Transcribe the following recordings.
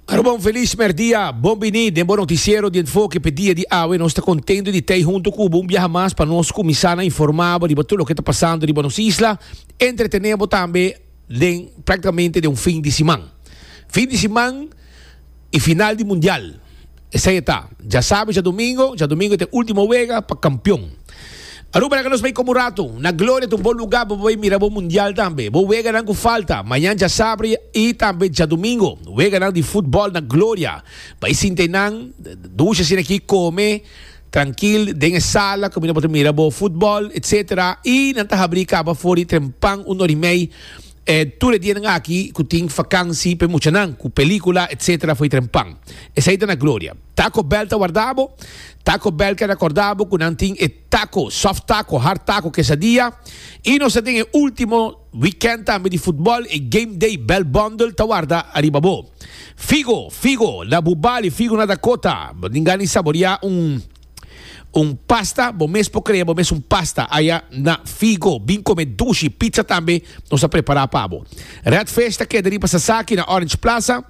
Arobon feliz merdia, bon bini den bo noticiero di Enfoke p'e dia di awe. Nos ta contento di t'ey hunto cu bo un biaha mas pa nos cuminsa na informa bo riba tur loke ta pasando riba nos isla, entretene bo tambe den practicamente den un fin di siman. Fin di siman. E final di Mundial. Esei e ta. Djasabi, djadumingo, djadumingo e ta e ultimo wega pa kampion. Aruba laga nos bai komo ratu na gloria ta un bon luga pa bo bai mira bo Mundial tambe, bo weganan ku falta, mañan djasabri i tambe djadumingo, weganan di futbòl na gloria. Bai sinta einan, dusha asina aki, kome trankil den e sala komo nan por ta mira bo futbòl etc. I nan ta habri kaba for di trempan un orimei. E tur e dianan aki ku tin fakansi pa e muchanan ku pelikula etc foi trempan. Esei ta na Gloria. Taco Bell ta warda bo? Taco Bell ta rakorda bo ku nan tin e taco, soft taco, hard taco, quesadilla. I nos ta den e ultimo wikènt tambe di futbòl, e Game Day Bell Bundle ta warda ariba bo. Figo, figo na Bubali, figo na Dakota. Bo tin gana di saboriá un. Un pasta, bo mes por crea bo mes un pasta aya na Figo. Bin come dushi, pizza tambe nos a prepara pa bo. Red Fish ta keda riba Sasaki na Orange Plaza.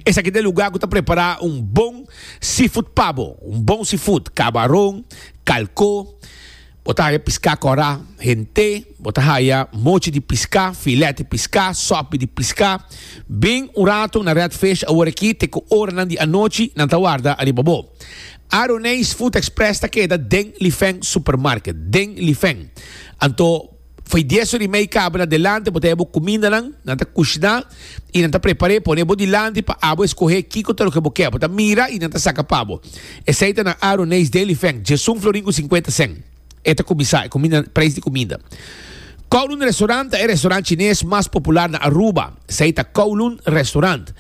Esaki ta e lugar cu ta prepara un bon seafood pa bo. Un bon seafood, cabaron, calco. Bo ta haya piská kòrá, hent'é, bo ta haya mochi di piská, filèt di piská, sòpi di piská. Bin un ratu na Red Fish awor akí te ku oranan di anochi nan ta warda ariba bo. Aroneis Food Express ta keda den Lifeng Supermarket, den Lifeng. Anto. Fai dies ora i mei cabra delante, bo ta haya bo cumindanan, nan ta cushná i nan ta prepar'é, pon'é bo dilanti pa abo escogé kico ta loke bo ke. Bo ta mira i nan ta saca pa bo. Esei ta na Aaron Ney's Daily Feng, Jesun Florin cu cincuenta cent. E ta cuminsá e cuminda, preis di cuminda. Kowloon Restaurant ta e restaurant Chines mas popular na Aruba. Esei ta Kowloon Restaurant.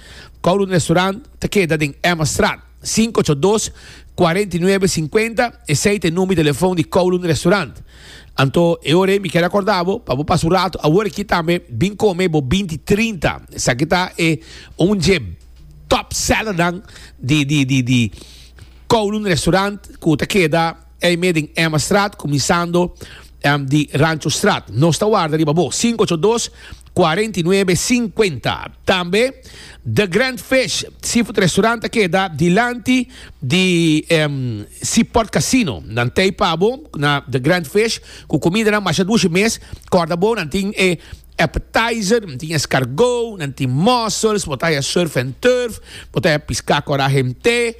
Kowloon Restaurant ta keda den Emma Straat. 582 49 50 esey ta e number di telefon di Kowloon Restaurant. Anto e ora mi kier acorda bo pa bo pasa un rato awor aki tambe bin come bo binti trinta. Esaki ta e un dje top sellernan di di di di Kowloon Restaurant cu ta keda. Ei mes den Emmastraat kuminsando di Ranchostraat. Nos ta warda riba bo. Sinku ocho dos, kuarenta i nuebe, sinkuenta. Tambe The Grand Fish Seafood Restaurant ta keda dilanti di Seaport Casino. Nan tei pa bo na The Grand Fish ku kumidanan masha dushi mes. Kòrda bo, nan tin e Appetizer, nan tin escargot, nan tin mussels, bo ta haya surf and turf, bo ta haya pisca cu ora hemte,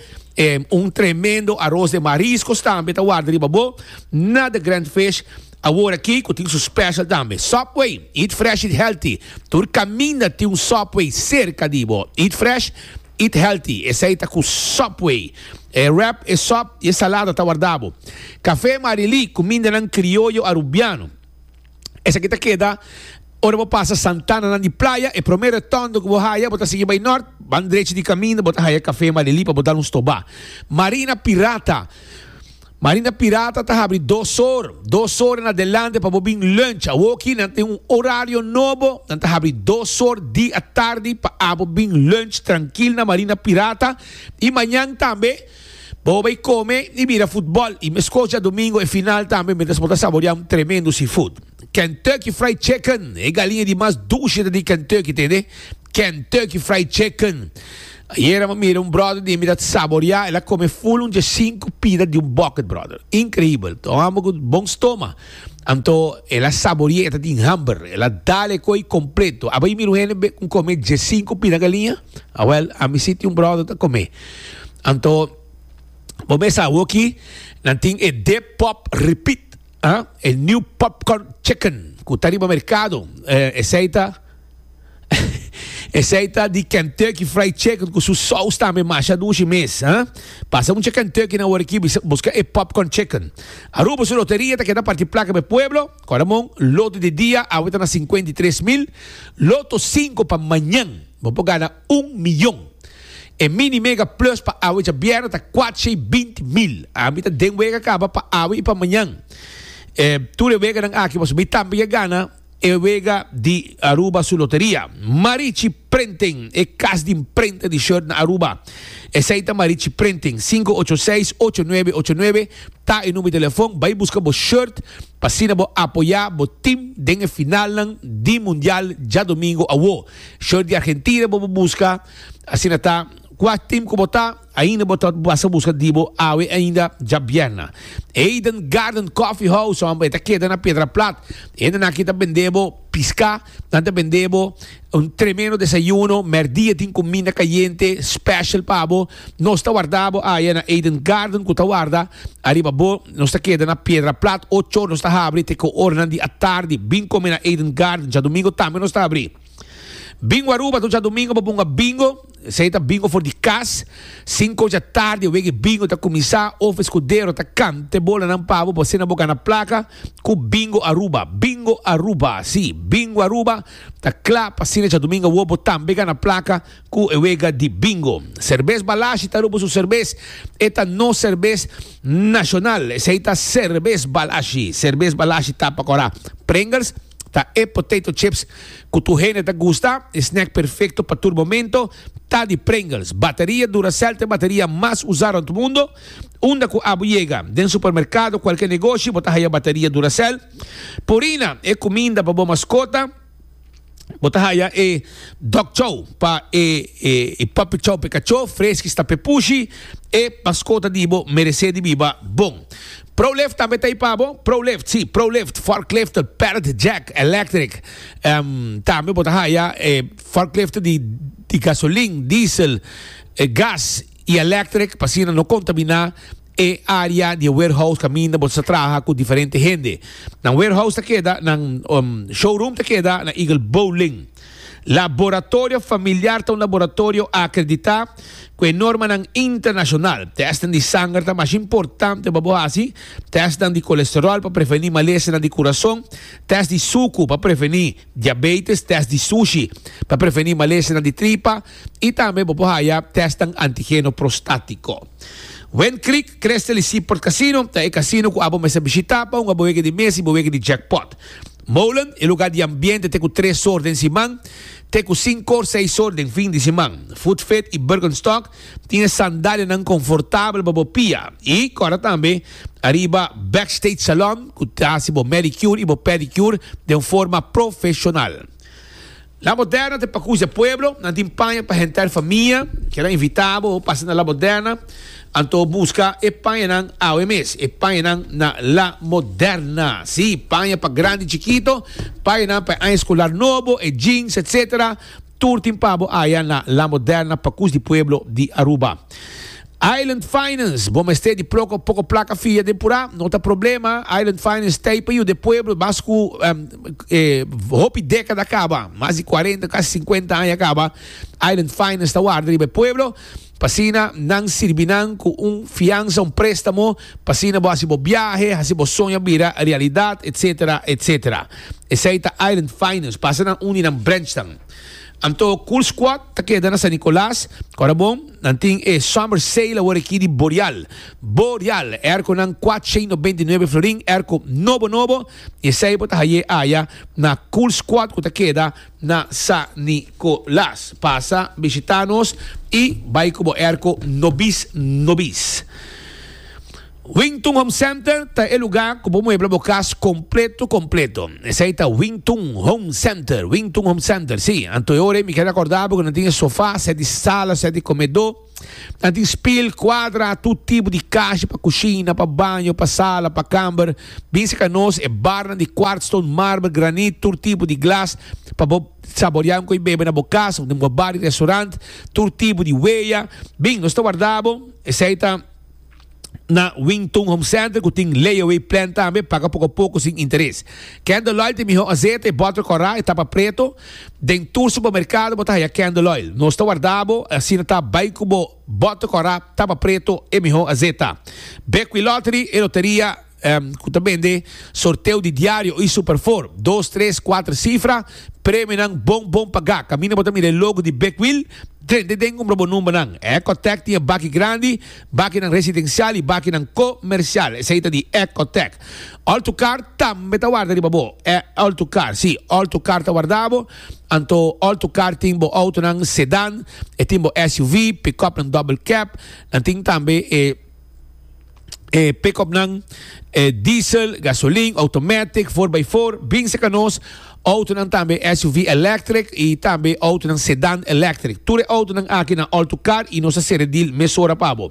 un tremendo aros de mariscos tambe ta warda riba bo na The Grand Fish, awor aki cu tin su special tambe. Subway, eat fresh, eat healthy, tur caminda tin un Subway cerca di bo, eat fresh, eat healthy, esey ta cu Subway, e wrap, e sop y e salada ta warda bo. Cafe Marilí, cumindanan crioyo Arubiano. Esaki ta keda ora bo pasa Santananan di Playa, e promé retondo ku bo haya, bo ta sigui bai nort, ban drechi di kaminda bo ta haya Kafé Malelí pa bo dal un stobá. Marina Pirata, Marina Pirata ta habri dos or, dos or en adelante pa bo bin lunch. Awoki nan tin un orario nobo, nan ta habri dos or di atardi pa abo bin lunch trankil na Marina Pirata i mañan tambe. Bo bay come y mira futbol y mes cos djadomingo e final tambe mientras bo ta saborea un tremendo seafood. Kentucky Fried Chicken, e galiña di mas dulce ta di Kentucky, tende? Kentucky Fried Chicken. Ayer a mira un brother di mi ta saborea, el a come full un djacinco pida di un bucket, brother. Increíble. Ta un hombre cu bon stoma. Anto el a saborea, e ta tin hamber. El a dal e coi completo. Aba y mira un hende cu come djacinco pida galiña? Awel, a mi si tin un brother ta come. Anto bo mes sa awoki nan tin e Depop Repeat, ah, e new popcorn chicken ku ta riba merkado. Esei ta esei ta di Kentucky Fried Chicken ku su sous tambe masha dushi mes, ah. Pasa un cha Kentucky na Woriki bisa buska e popcorn chicken. Aruba su loteria ta keda parti plaka pa e pueblo, Coramon, loto di dia awe ta na sinkuenta i tres mil, loto sinku pa mañan bo por gana Un miyon. E mini mega plus pa awe djabièrnè ta kuatshei binti mil. Ami ta den wega kaba pa awe i pa mañan. E tur e weganan aki pasobra mi tambe ke gana e wega di Aruba su loteria. Marichi Printing, e kas di mprenta di shirt na Aruba. Esei ta Marichi Printing. Sinku ocho seis ocho nuebe ocho nuebe ta e number di telefon. Bai buska bo shirt pa asina bo apoyá bo tim den e finalnan di mundial djadomingo awo. Short di Argentina bo por busca asina ta cua tim cu bo ta ainda bo ta basa busca di bo awe ainda ja bierna Eden Garden Coffee House hombre ta keda na Piedra Plat hende na ki ta bende bo pisca nan ta bende bo un tremendo desayuno merdia tin cuminda cayente special pa bo Nos ta warda bo aya na Eden Garden ku ta warda ariba bo. Nos ta keda na Piedra Plat. Ocho or nos ta habri te ku oranan di atardi. Bin kome na Eden Garden. Djadumingu tambe nos ta abri. Bingo Aruba tur djadumingu bo bunga bingo. Esei ta bingo for di kas. Sinku ocho atardi e wege bingo ta kuminsá. Of eskudero ta kanta e bolanan pa bo pa asina bo gana plaka ku Bingo Aruba. Bingo Aruba, si, Bingo Aruba ta kla pa asina djadumingu awor bo tambe gana plaka. Cu e wega di Bingo. Serbes Balashi ta rubo su serbes. E ta nos serbes nacional. Esey ta Serbes Balashi. Serbes Balashi ta pa cora. Pringles ta e potato chips cu tur hende ta gusta. E snack perfecto pa tur momento ta di Pringles. Bateria Duracell ta e bateria mas usa rond mundo. Unda cu abo yega, den supermercado, cualkier negoshi, bo ta haya bateria Duracell. Purina, e cuminda pa bo mascota. Bo ta haya e dog chow pa e e puppy chow pe cachó freski sta pe pushi e mascota di bo merece di biba bon. Prolift tambe ta ipa bo Prolift si Prolift forklift pallet jack electric em tambe bo ta haya e forklift di di gasolin diesel gas y electric pa asina no contamina e area di e warehouse caminda bo ta sa traha cu diferente hende. Nan warehouse ta keda, nan showroom ta keda na Eagle Bowling. Laboratorio familiar ta un laboratorio acredita cu e normanan internacional. Testnan di sanger ta mas importante pa bo haci, testnan di colesterol pa preveni malesanan di curason, test di sucu pa preveni. Diabetes, test di sushi pa preveni malesianan di tripa y tambe bo por haya testnan antigeno prostatico. Wind Creek Crystal y Seaport Casino ta e casino cu abo mester bishita pa hunga bo weke di mes y bo weke di jackpot. Molen, e lugar di ambiente te cu tres or den siman, te cu cinco or seis or den fin di siman. Food Fit y Birkenstock Tin e sandalianan confortabel pa bo pia y cora tambe ariba Backstage Salon cu ta haci bo manicure y bo pedicure den un forma profesional. La Moderna ta pa cuis e pueblo, nan tin paña pa henter famia, kier a invita bo pasa na La Moderna, anto busca e pañanan awe mes, e pañanan na La Moderna. Sí, paña pa grandi y chikito, pañanan pa e aña escolar nobo, e jeans, etcetera. Tur tin pabo aya na La Moderna pa cus di pueblo di Aruba. Island Finance, Bo mester di ploco poco placa fia den pura? No ta problema, Island Finance sta ahi pa yuda e pueblo bas cu e hopi decada caba, mas di cuarenta casi cincuenta aña caba, Island Finance ta warda riba e pueblo. P'asina nan sirbi nan ku un fiansa, un préstamo, p'asina bo hasi bo biahe, hasi bo soña bira realidat, etc. Etc. Esei ta Island Finance, pasa nan un di nan branchnan. Anto Cool Squad ta keda na San Nicolas, kòrda bon, nan tin e Summer Sale awor aki di Boreal. Boreal, airconan kuat shei nobenta i nuebe florin, airco nobo nobo, i esei bo ta hai'é aya na Cool Squad ku ta keda, na Sa Nicolas. Pasa bishita nos y bay cu bo erco nobis nobis. Wington Home Center ta e lugar cu bo muebla bo cas completo completo. Esey ta Wington Home Center, Wington Home Center, si. Anto e ora ey mi kier acorda bo cu nan tin e sofa, sea di sala, sea di comedor. Ta tin spil, kuadra, tur tipo di kashi pa kushina, pa baño, pa sala, pa kamber. Bin seka nos e barnan di kwartstone, marber, granit, tur tipo di glas pa bo saborea un koi bebe na bo kas of den bo bar di restorant, tur tipo di weya. Bin, nos ta warda bo, esei ta. na Wington Home Center cu tin layaway plan tambe, paga poco poco sin interes. Candle Oil tin miho azete y butter cora y tapa preto. Den tur supermercado bo ta haya Candle Oil. Nos ta warda bo y asina ta bay cu bo butter cora, tapa preto y miho azeta. Bekwilottery y loteria ku ta bende sorteo di diario i superfor, dos tres kuater sifra, premionan bon bon pagá. Kaminda bo ta mira e logo di Big Wheel, drente den kumpra bo numbernan. Ecotec tin e baki grandi, bakinan residensial i bakinan komersial. Esei ta di Ecotec. Altocar tambe ta warda riba bo. E Altocar, si, Altocar ta warda bo. Anto Altocar tin bo outonan sedan, e tin bo SUV, pick-upnan double cab, nan tin tambe e. e pick-upnan, e diesel, gasolin, automatic, four by four, bin serka nos, autonan tambe SUV electric y tambe autonan sedan electric. Tur e autonan aki na All to Car y nos a sere deal mesora pa bo.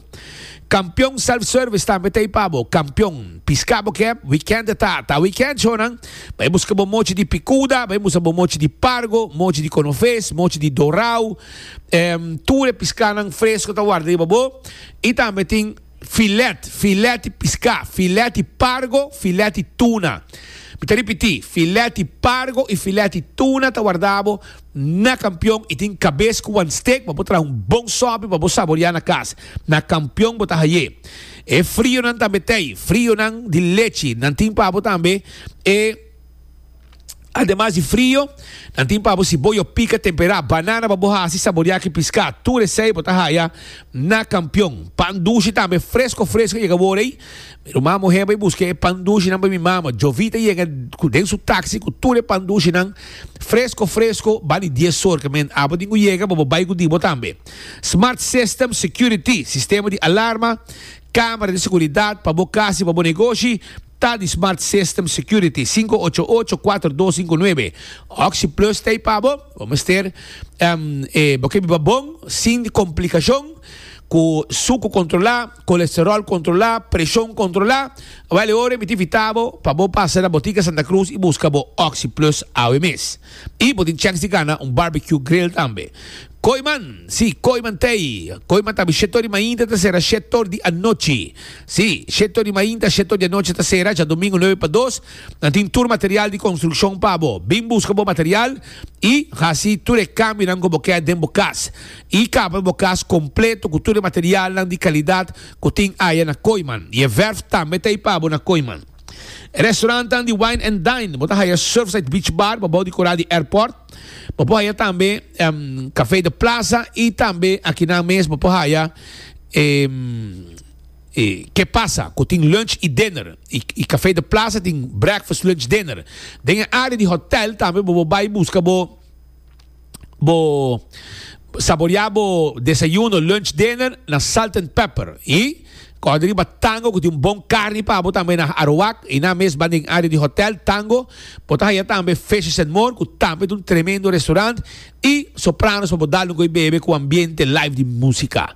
Campeon Self Service tambe ta ey pa bo. Campeon, pisca bo kep, weekend e ta, ta weekend shonan, bay busca bo mochi di picuda, bay busca bo mochi di pargo, mochi di conoves, mochi di dorao, em, tur e piscanan fresco ta warda riba bo. I tambe tin filèt, filèt di piská, filèt di pargo, filèt di tuna. Mi ta ripití, filèt di pargo i filèt di tuna ta wardabo na kampion i tin kabes ku wan stek pa bo traha un bon sòpi pa bo saboriá na kas. Na kampion bo ta haié e frionan tambe tei, frionan di lechi. Nan tin pa bo tambe e. Ademas di frio, nan tin pa bo siboyo pika temperá, banana pa bo hasi saboriá ki piská, tur esei bo ta haya na Kampion. Pan dushi tambe fresko fresko yega wor ei. Mi ruman muhé bai buska e pan dushinan pa mi mama. Jovita yega ku den su taksi ku tur e pan dushinan fresko fresko bali dies sor ke men abo tin ku yega bo bo bai ku di bo tambe. Smart System Security, sistema di alarma, Camera di seguridad pa bo cas y pa bo negoshi ta di Smart System Security, sinku ocho ocho, kuater dos sinku nuebe. Oxi Plus ta ei pa bo. Bo mester e bo ke biba bon, sin complicashon, ku suku kontrolá, kolesteròl kontrolá, preshon kontrolá. Awor e ora mi ta invitá bo pa bo pasa na Botica Santa Cruz y buska bo Oxi Plus awe mes. Y bo tin chance di gana un barbecue grill tambe. Koiman, si, koiman tei. Koiman tambe shetor di mainta ta sera shetor di anochi. Si, shetor di mainta, shetor di anochi ta sera, dja domingo nuebe pa dos. Nan tin tur material di construccion pa bo. Bin busca bo material y haci tur e cambionan cu bo keda den bo cas. Y kapra bo cas completo cu tur e materialnan di calidad cu tin aya na Koiman. Y e verf tambe tei pa bo na Koiman. E restaurantan di Wine and Dine, bo ta haya Surfside Beach Bar pabao di kora di airport. Bo por haya tambe em, Café de Plaza y tambe akinan mes bo por haya em, eh, Que Pasa, cu tin lunch y dinner. Y, y Café de Plaza tin breakfast, lunch, dinner. Den e área di hotel tambe bo por bai busca bo bo saborea bo desayuno, lunch, dinner na salt and pepper y coge di riba tango cu tin un bon carni pa bo tambe na Arawak y na mesba den area di hotel Tango bo ta haya tambe Fishes and More cu tambe ta un tremendo restaurant y sopranos pa bo dal un goi bebe cu ambiente live di musica.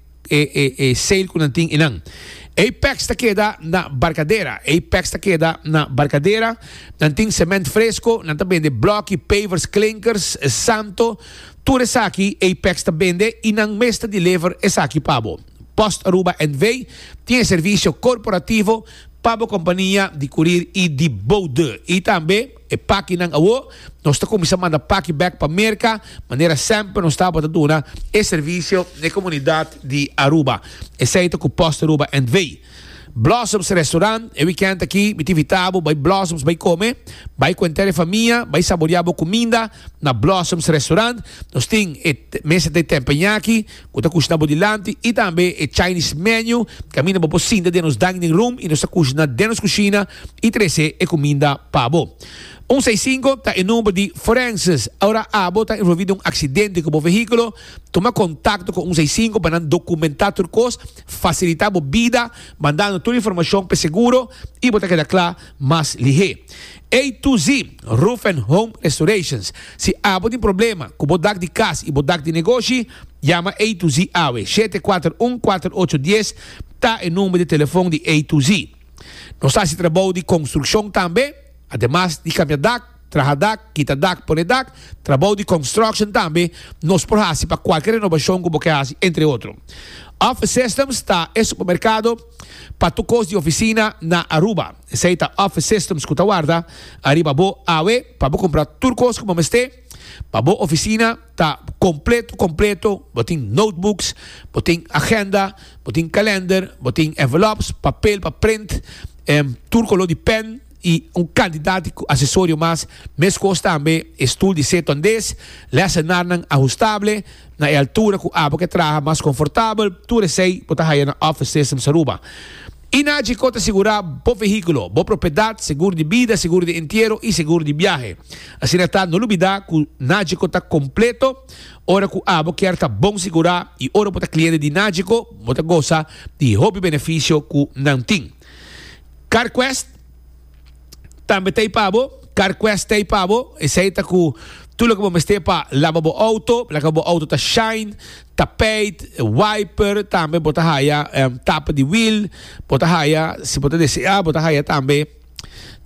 e e e sail ku nan tin inan. Apex ta keda na Barkadera. Apex ta keda na Barkadera. Nan tin sement fresko, nan ta bende bloki, pavers, klinkers, santo, tur esaki Apex ta bende i nan mes ta deliver esaki pa bo. Post Aruba NV tin e servisio korporativo pa bo kompania di kurir i di bou deur. I tambe. E pakinan awo nos ta kuminsá manda paki bek pa Merka manera semper nos tabata duna e servisio n'e komunidat di Aruba, esei ta ku Post Aruba Entvei. Blossoms Restaurant, E wikènt aki mi ta invitá bo bai Blossoms bai kome, bai ku entero e famia, bai saboreá bo kuminda na Blossoms Restaurant. Nos tin e mesa di tempeña aki. ku ta kush na bo dilanti i tambe e Chinese menu. Kaminda bo por sinta den nos dining room i nos ta kush na den nos kushina i trese e kuminda pa bo. Un seis sinku ta e number di Forenses. Ora abo ta envolvi den un aksidente ku bo vehíkulo, tuma kontakto ku un seis sinku pa nan dokumentá tur kos, fasilitá bo bida mandando tur informashon p'e seguro i bo ta keda kla mas lihé. A to Z Roof and Home Restorations, Si abo tin problema ku bo dak di kas i bo dak di negoshi, yama A to Z awe. Shete kuater un kuater ocho dies ta e number di telefon di A to Z. Nos ta hasi trabou di konstrukshon tambe, ademas di kambia dak, traha dak, kita dak, pone dak, trabou di construction tambe nos por hasi pa kualke renobashon ku bo ke hasi entre otro. Office Systems ta e supermerkado pa tur kos di ofisina na Aruba. Esei ta Office Systems ku ta warda ariba bo awe pa bo kumpra tur kos ku bo mester pa bo ofisina ta kompleto kompleto, bo tin notebooks, bo tin agenda, bo tin kalender, bo tin envelops, papel pa print, em, tur koló di pen i un kantidat di asesorio mas. Meskos tambe e stul di seto andes, lèsennarnan ahustable na e altura ku abo ke traha mas konfortabel, tur esei bo ta haya na Office Systems Aruba. Inagco ta sigurá bo vehíkulo, bo propiedat, segur di bida, segur di entiero i segur di biahe. Asina ta, no lubidá ku Nagco ta kompleto ora ku abo kier ta bon sigurá i ora bo ta kliente di Nagco bo ta gosa di hopi benefisio ku nan tin. CarQuest. tambe ta ei pa bo, CarQuest ta ei pa bo, esei ta ku tur loke bo mester pa laba bo outo, laga ku bo outo ta shine, tapeit, wiper, tambe bo ta haya tapa di wiel, bo ta haya si bo ta desea bo ta haya tambe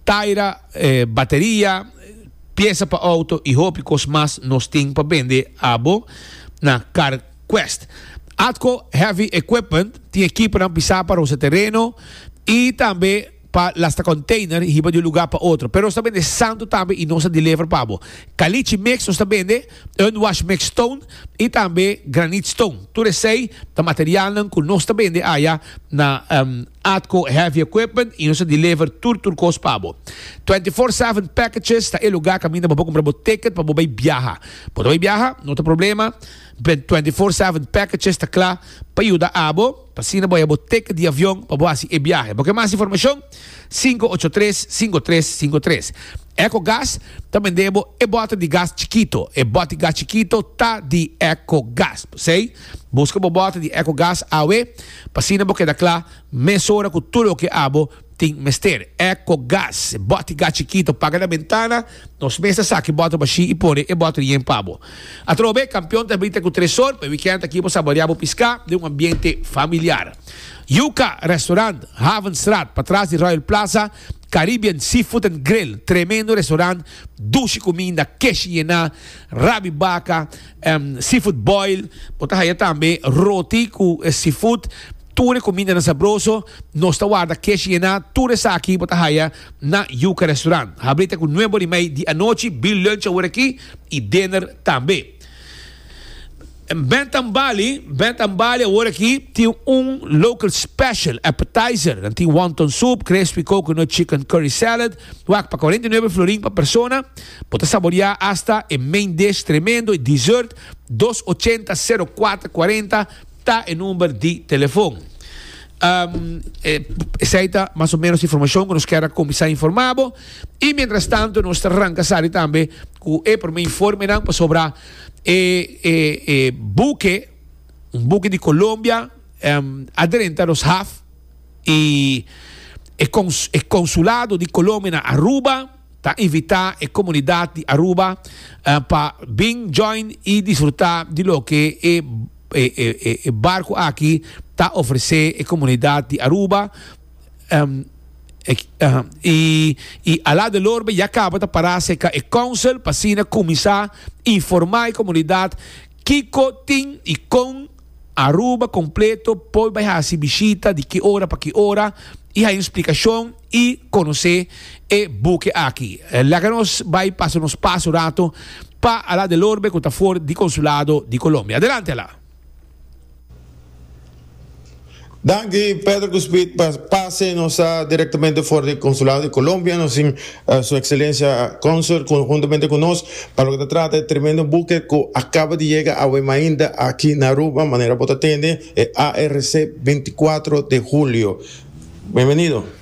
taira, bateria, piesa pa outo i hopi kos mas nos tin pa bende abo na CarQuest. Atco Heavy Equipment tin ekiponan pisá pa rosa tereno i tambe. pa lasta container hiba di un lugar pa otro pero nos ta bende santo tambe y nos a deliver pa bo caliche mix nos ta bende unwash mix stone y tambe granite stone tur esey ta materialnan cu nos ta bende aya na atco heavy equipment y nos a deliver tur tur cos pa bo twenty four seven packages ta e lugar caminda bo por cumpra bo ticket pa bo bay biaha bo ta bay biaha no ta problema twenty four seven packages ta cla pa yuda abo. pa asina bo haya bo teke di avion pa bo hasi e biahe. Bo ke mas informashon? sinku ocho tres, sinku tres, sinku tres. Ecogas ta bend'é bo e bòter di gas chikito. E bòter gas chikito ta di Ecogas. P'esei, buska bo bòter di Ecogas awe, pa asina bo keda kla mesora ku tur loke abo. Tin mester eco gas. Bot e gas chikito, paga na bentana. Nos mes ta saki bottle bashi y pone e bottle yen pa bo. Atrobe, Campeon ta brita cu Tresor pa e weekend aki bo saborea bo pisca den un ambiente familiar. Yuca Restaurant, Havenstraat, patras di Royal Plaza, Caribbean Seafood and Grill, tremendo restaurant, dushi cuminda, keshi yena, rabi baca, seafood boil. Bo ta haya tambe roti cu seafood. Tur e kumindanan sabroso nos ta warda kesh yená tur esaki bo ta haya na Yuca Restaurant. Habri ta ku nue bor i mei di anochi, bil lunch awor aki i dinner tambe. Bent and Bali, Bent and Bali awor aki tin un local special appetizer. Nan tin wonton soup, crispy coconut chicken curry salad, wak pa cuarenta y nueve florin pa persona. Bo ta saboreá hasta e main dish tremendo i dessert dos ochenta sero kuater kuarenta. Ta e number di telefon. Esei ta mas o menos e informashon ku nos kier a kuminsá informá bo. I miéntras tantu nos ta ranka sali tambe ku e promé informenan pasobra e e buke, un buke di Colombia, a drenta nos haf i e e konsulado di Colombia na Aruba, Ta invita e comunidad di Aruba pa bin join y disfruta di loke e e barco aki ta ofrece e comunidad di Aruba y a la de lorbe ya caba ta para cerca e council pa asina cuminsa informa e comunidad Kiko tin i kon Aruba kompleto por bai hasi bishita, di ki ora pa ki ora, i haña splikashon i konosé e buke aki. Laga nos bai pasa nos pas un rato pa Alá del Orbe ku ta for di Konsulado di Kolombia. Adelante Alá! Danki Pedro ku Speed pa pase. Nos sta direktamente for di Konsulado di Kolombia. Nos tin eh, Su Ekselencia Konsul ku juntamente ku nos pa lo ke ta trata e tremendo buke ku akaba di yega awe mainta aki na Aruba, manera bo ta tende e ARC 24 de julio. Bienvenido.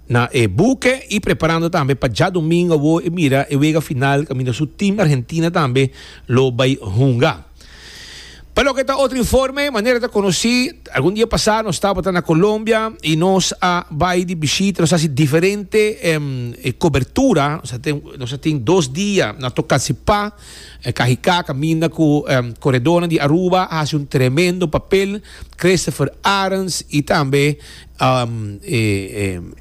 Na e buke y preparando tambe pa djadumingo awo e mira e wega final caminda su team Argentina tambe lo bay hunga. Pa loke ta otro informe, manera ta conoci algun dia pasa nos tabata na Colombia y nos a bay di bishita, nos a haci diferente cobertura, nos a tin dos dia na Tocancipá, Cajicá caminda cu coredornan di Aruba a haci un tremendo papel, Christopher Arends y tambe.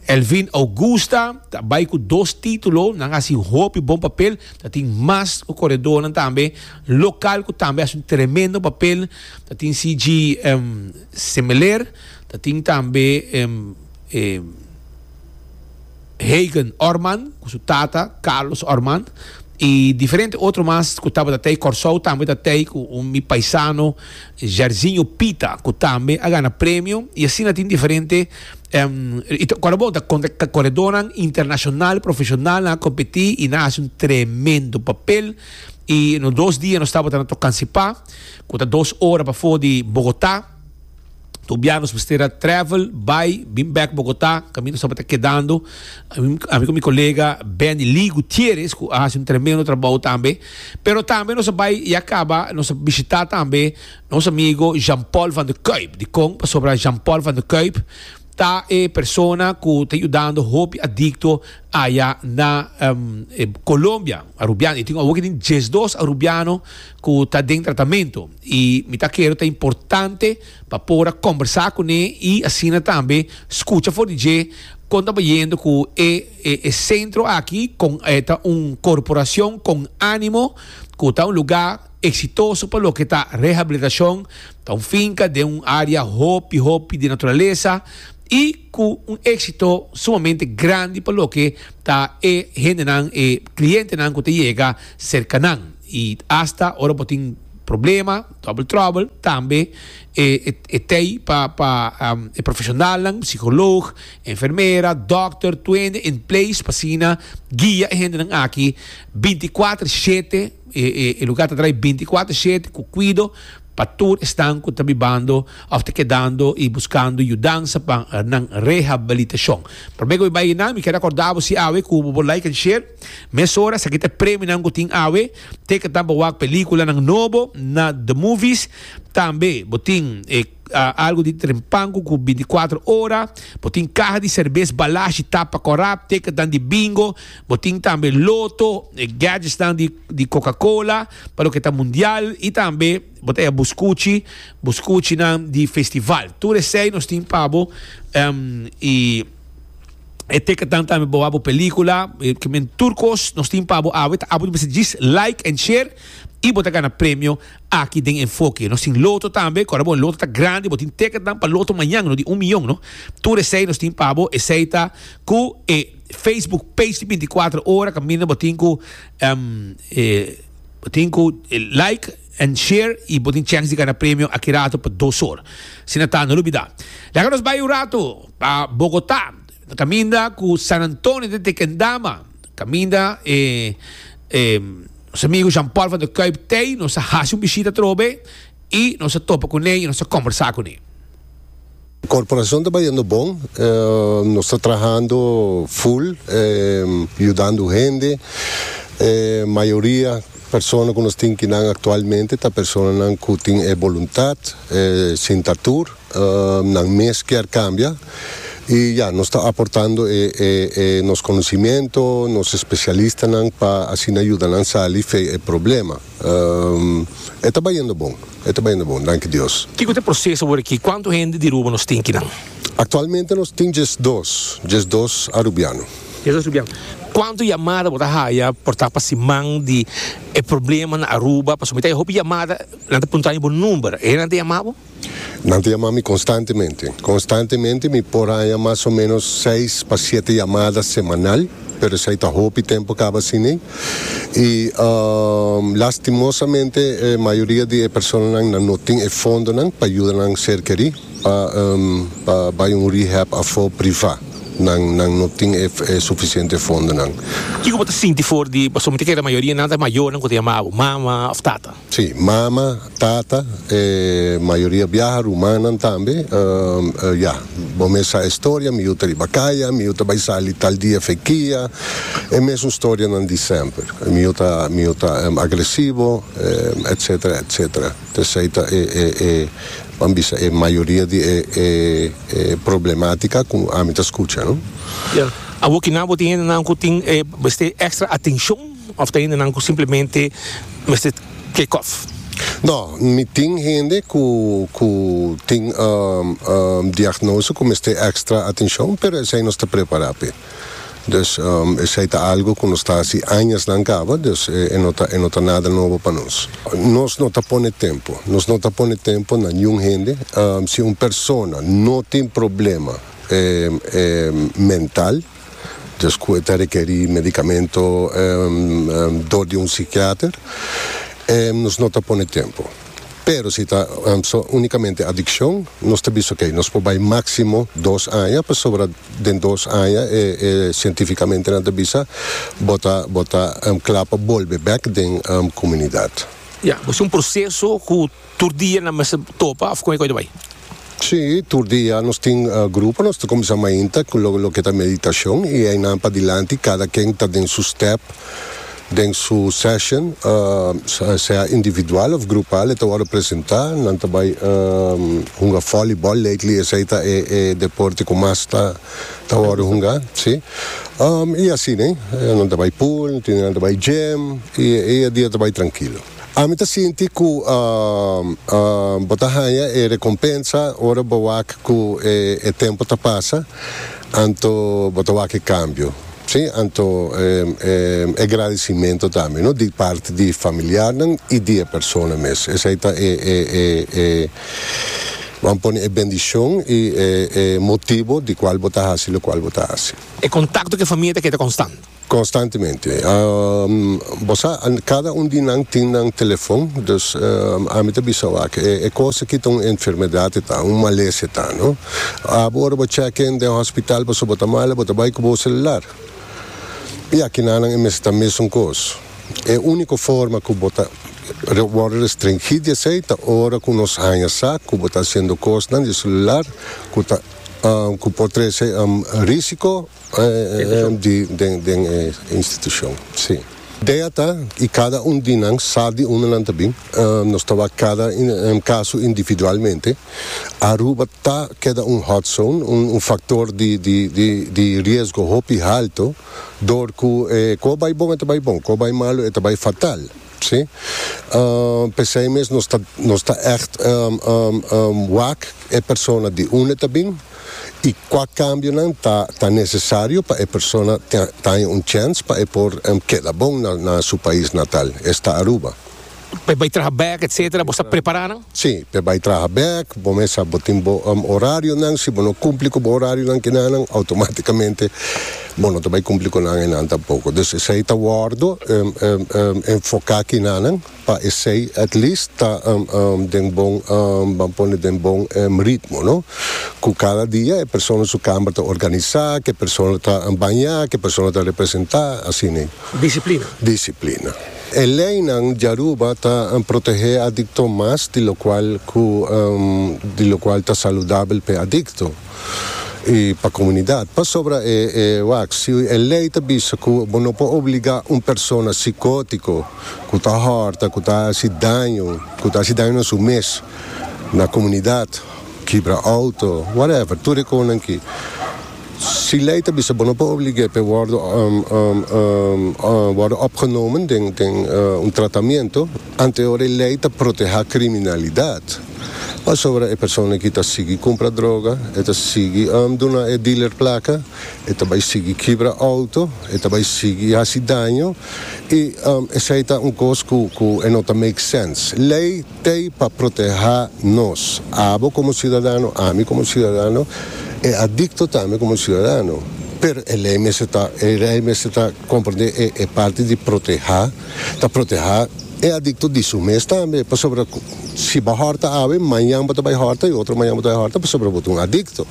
Elvin Augusta ta bai ku dos titulo, nan hasi hopi bon papel, ta tin mas ku koredónan tambe lokal ku tambe hasi un tremendo papel, ta tin CG Semeler, ta tin tambe. Hagen Orman cu su tata Carlos Orman y diferente otro mas cu tabata tey Corsou tambe ta tey cu un mi paisano Jairzinho Pita cu tambe a gana premio y asina tin diferente y ta ora bo ta contra coredonan internacional profesional nan a competi y nan a haci un tremendo papel y nos dos dia nos tabata na Tocancipá cu ta dos ora pafor di Bogota. Tur bia nos mester a travel, bai, bin bek Bogota, caminda nos tabata kedando. Ami cu mi colega Benny Lee Gutierrez, cu a haci un tremendo trabou tambe. Pero tambe nos a bai, ya caba, nos a bishita tambe nos amigo Jean Paul van der Kuip. Dicon? Pasobra Jean Paul van der Kuip, Ta e persona cu ta yudando hopi adicto aya na Colombia, Arubiano. E tin awor tin diesdos Arubiano cu ta den tratamento. Y mi ta kere ta importante pa por a combersa cu ne y asina tambe scucha for di dje con ta bayendo cu e e centro aki con ta un corporacion con animo cu ta un lugar. Eksitoso pa loke ta rehabilitashon, ta un finka den un área hopi hopi di naturalesa i ku un éksito sumamente grandi pa loke ta e hendenan, e klientenan ku ta yega serka nan. I asta ora bo tin problema, double trouble, tambe e e tei pa pa e profeshonalnan, psikoloog, enfermera, dòkter, tuende en place pa asina guia e hendenan aki binti kuater shete. E lugar ta draai binticuater shete cu cuido pa tur esnan cu ta bibando of ta kedando y buscando yudansa pa nan rehabilitacion. Prome cu mi bay eynan mi kier acorda bo si awe cu bo por like and share. Mesora esaki ta e premionan cu tin awe. Teken tambe wak peliculanan nobo na The Movies. Tambe bo tin e. algu di trempanku ku binticuatro ora, bo tin kaha di serbes balashi, tapa kòrap, teketnan di bingo, bo tin tambe loto, e gadgetsnan di di Coca-Cola pa loke ta mundial i tambe bo ta haya buskuchi, buskuchinan di festival. Tur esei nos tin pa bo em i e teketnan tambe bo wak bo pelíkula, e ke men tur kos nos tin pa bo awe ta apo di mester djis like and share i bo ta gana premio Aki den enfoke nos tin loto tambe, ku ora bo loto ta grandi, bo tin teketnan pa loto mañan no di un miyon no. Tur esei nos tin pa bo, esei ta ku e Facebook page di binticuatro ora kaminda bo tin ku bo tin ku like and share i bo tin chèns di gana premio aki rato pa dos or. Asina ta no lubidá. Laga nos bai un ratu pa Bogotá. Caminda cu San Antonio ta Tequendama. Caminda e e nos amigo Jean Paul van der Kuip tey. Nos a haci un bishita atrobe y nos a topa cune y nos a combersa cune. Corporacion ta bayendo bon. Nos ta trahando full yudando hende. E mayoria persona cu nos tin kinan actualmente ta personanan cu tin e voluntad sinta tur. nan mes kier cambia y ya nos ta aportando nos conocimiento, nos especialistanan pa asina yuda nan sali fey e problema. E ta bayendo bon, e ta bayendo bon, danki Dios. Kico ta e proces awor aki? Cuanto hende di Aruba nos tin kinan? Actualmente nos tin djes dos, djes dos Arubiano. Djes dos Arubiano. Cuanto yamada bo ta haya por ta pa siman di e problema na Aruba? Pasobra mi ta haya hopi yamada nan ta puntra bo number. E nan ta yama bo? Nan ta yama mi konstantemente. Konstantemente mi por haña mas o menos seis pa siete yamada semanal, pero esei ta hopi tempu kaba asini. I lastimosamente e mayoria di e personanan nan no tin e fondonan pa yuda nan ser kerí pa pa bai un rehab afó privá. Nan nan no tin e e sufisiente fondonan. Kiko bo ta sinti for di pasobra mi ta kere la mayoria nan ta mayornan ku ta yama abo mama òf tata? Sí, mama, tata, e mayoria biaha, rumannan tambe. Ya, bo mes sa e storia, mi yu ta riba kaya, mi yu ta bai sali tal dia fekia, e mesun storianan di semper. Mi yu ta, mi yu ta agresivo, etcetera, etcetera. Tensei ta e, e, e, ban bisa, e mayoria di e, e, e problematica cu ami ta scucha, no? Ya, awor kinan bo tin hendenan cu tin e mester extra atencion? Of ta hende nan cu simplemente mester take off? No, mi tin hende cu cu tin diagnoso cu mester extra atencion, pero esey nos ta prepara p'e. Dus esey ta algo cu nos ta haci añasnan caba, dus e no ta e no ta nada nobo pa nos. Nos no ta pone tempo, nos no ta pone tempo na niun hende. Si un persona no tin problema mental. djes cu e ta rekerí medicamento dor di un psiquiater nos no ta pone tempo pero si ta unicamente adiccion nos ta bisa ok nos por bay maximo dos aña pasobra den dos aña e cientificamentnan ta bisa bo ta bo ta cla pa bolbe bek den comunidad. Ya bo si un proceso cu. Tur dia nan mester topa of kome koe ta bai? Si, tur dia nos tin grupo, nos ta kuminsá mainta ku lo loke ta meditashon i einan padilanti kada ken ta den su stèp den su sèshon sea individual òf grupal e ta wòrdu presentá. Nan ta bai hunga vòlibòl lately esei ta e e deporte ku mas ta ta wòrdu hunga si i asina nan ta bai pool nan ta bai gym i e dia ta bai trankilo. Ami ta sinti ku bo ta haña e rekompensa ora bo wak ku e tempu ta pasa, anto bo ta wak e kambio, si anto e gradisimentu tambe no di parti di familiarnan i di e persona mes. Esei ta e Bo a pone e bendishon i e motibu di kual bo ta hasi lokual bo ta hasi. E kontakto ku e famia ta keda konstant. Constantemente. Bo sa, cada un di nan tin nan telefon, dus ami ta bisa bo aki, e cos aki ta un enfermedad e ta, un malesa e ta, no? Abo ora bo check in den hospital pasobra bo ta mala, bo ta bay cu bo celular. Y aki nanan e mester ta mesun cos. E unico forma cu bo ta worde restringí di esey ta ora cu nos haña sa cu bo ta haciendo cosnan di e celular cu ta, cu por trece risico Den e institucion si. Idea ta y cada un di nan sa di unda nan ta bin, nos ta wak cada caso individualmente. Aruba ta keda un hot zone, un factor di riesgo hopi halto, door cu cu a bay bon e ta bay bon, cu a bay malo e ta bay fatal. Si. P'esei mes nos ta nos ta ègt wak e persona di unda ta bin i kua kambionan ta ta nesesario pa e persona ta ta haña un chèns pa e por keda bon na na su pais natal, es ta Aruba. Pa e bai traha bèk etsetera bo sa prepará nan? Si, p'e bai traha bèk, bo mester sa bo tin bo orarionan, si bo no kumpli ku bo orarionan kinanan outomátikamente. Bo no ta bai cumpli cu nan enan tampoco. Dus esey ta wordo enfoca kinanan pa esey at least ta den bon ban pone den bon ritmo no. Cu cada dia e persona su camber ta organisa, cu e persona ta baña, cu e persona ta representa, así ne. Disciplina. Disciplina. E leynan di Aruba ta protehe e adicto mas di locual cu di locual ta saludabel p'e adicto. i pa komunidat. Pasobra e e wak si e lei ta bisa ku bo no por obligá un persona sikótiko ku ta hòrta, ku ta hasi daño, ku ta hasi daño na su mes, na komunidat, kibra outo, whatever, tur e konan ki. Si lei ta bisa bo no por oblig'é p'e wòrdu wòrdu opgenomen den den un tratamentu. Anteor e lei ta protehá kriminalidat, pasobra e persona ki ta sigui kumpra droga, e ta sigui duna e dealer plaka, e ta bai sigui kibra outo, e ta bai sigui hasi daño, i esei ta un kos ku e no ta make sense. Lei t'ei pa protehá nos, abo komo siudadano, ami komo siudadano, e adikto tambe komo siudadano. Pero e lei mester ta, e lei mester ta komprendé e parti di protehá. ta protehá e adikto di su mes tambe, pasobra ku si bo hòrta awe, mañan bo ta bai hòrta i otro mañan bo ta bai hòrta pasobra bo ta un adikto.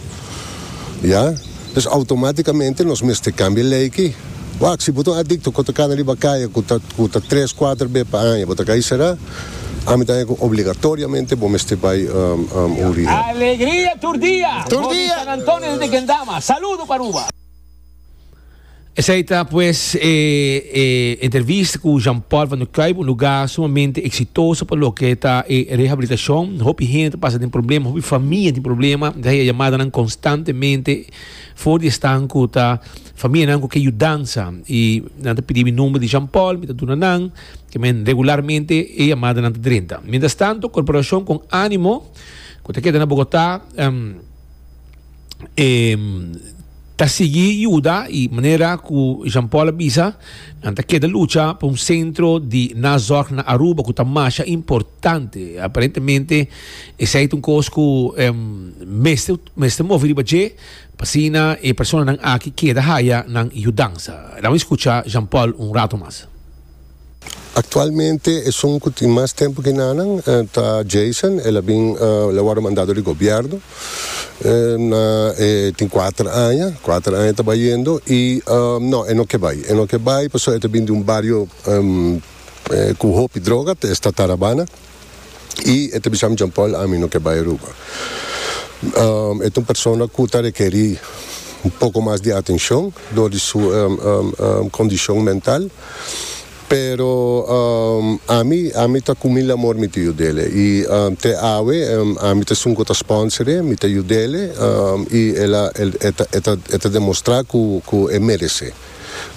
Ya. Pues outomátikamente nos mester kambia lei ki. Wak, si bo ta un adikto ku ta kana riba kaya ku ta ku ta tres, kuater be pa aña bo ta kai será, ami ta haña ku obligatoriamente bo mester bai un rehab. Alegria tur dia! Tur dia! Bo di San Antonio di Tequendama, saludo pa Aruba! Esei ta pues e e entrevista cu Jean Paul van der Kuyp, un lugar sumamente exitoso pa loke ta e rehabilitacion. Hopi hende ta pasa den problema, hopi famia tin problema, ta haña yamadanan constantemente for di esnan cu ta famianan cu ke yudansa y nan ta pidi mi nomber di Jean Paul, mi ta duna nan, ke men regularmente e yamadanan ta drenta. Mientras tanto, Corporacion con Animo, cu ta keda na Bogota, ta sigui yuda i manera ku Jean Paul a bisa nan ta keda lucha pa un sentro di nazorg na Aruba ku ta masha importante aparentemente esei ta un kos ku mester mester move riba dje pa asina e personanan aki keda haya nan yudansa lamis kucha Jean Paul un rato mas Actualmente esun cu tin mas tempo que nanan ta Jason, el a bin el a wordo mandado di gobierno na e tin cuater aña, cuater aña ta bayendo y no e no ke bay, e no ke bay pasobra e ta bin di un bario cu hopi droga ta esta Tarabana. I e ta bisam, Jean Paul ami no ke bai Aruba. E ta un persona ku ta rekeri un poko mas di atenshon dor di su kondishon mental, pero ami ami ta ku mil amor mi ta yud'e i te awe ami ta esun ku ta spònser'e, mi ta yud'e i e ta demostrá ku e meres'e.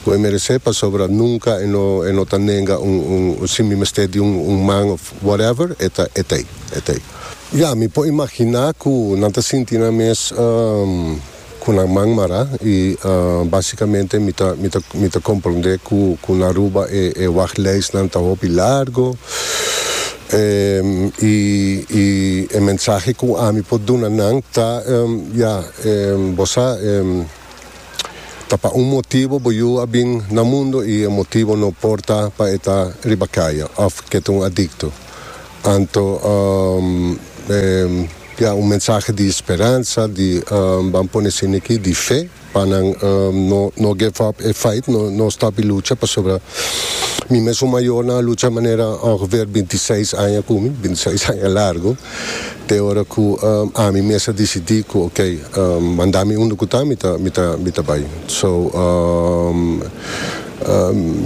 ku e meresé pasobra nunka e no e no ta nenga un un sin mi mester di un un man òf whatever e ta e ta ei e ta ei. Ya mi por imaginá ku nan ta sinti nan mes ku nan man mará i básikamente mi ta mi ta mi ta komprondé ku ku na Aruba e e waglijstnan ta hopi largo i i e mensahe ku ami por duna nan ta ya bo sa. Ta pa un motibo bo yu a bin na mundo i e motibo no por ta pa e ta riba kaya òf ke ta un adikto. Anto e ya un mensahe di speransa, di ban pone sin aki, di fe pa nan no no give up e fight, no no stop e lucha pasobra mi mes un mayornan a lucha manera ongeveer binti seis aña ku mi, binti seis aña largo. te ora ku ami mes a disidí ku ok manda mi unda ku ta mi ta mi ta mi ta bai so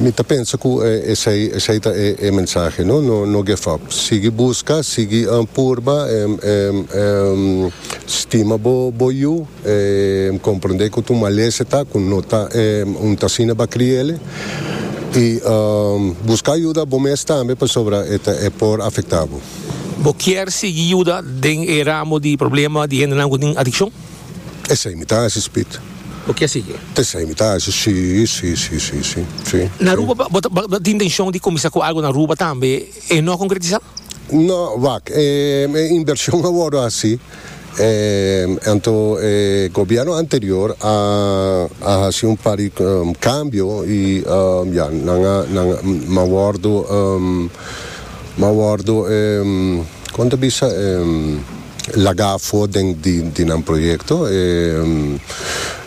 mi ta pensa ku esei esei ta e e mensahe no no no gef up sigui buska sigui purba stima bo bo yu. Em comprende cu tu malese ta, cu no ta em un t'asina ba cria ele. Y em busca yuda bo mes tambe pasobra e ta e por afecta bo. Bo kier sigui yuda den e ramo di problema di hendenan cu tin adiccion? Esey mi ta haci, Speed. Bo kier sigui? Tesey mi ta haci, si, si, si, si, si, si. Na Aruba bo ta bo ta tin intencion di cuminsa cu algo na Aruba tambe, e no a concretisa? No, wak, em e inversion a worde haci. Anto e gobierno anterior a a haci un par di cambio y ya nan a nan a a wordo nan a wordo con ta bisa laga afo den di di nan proyecto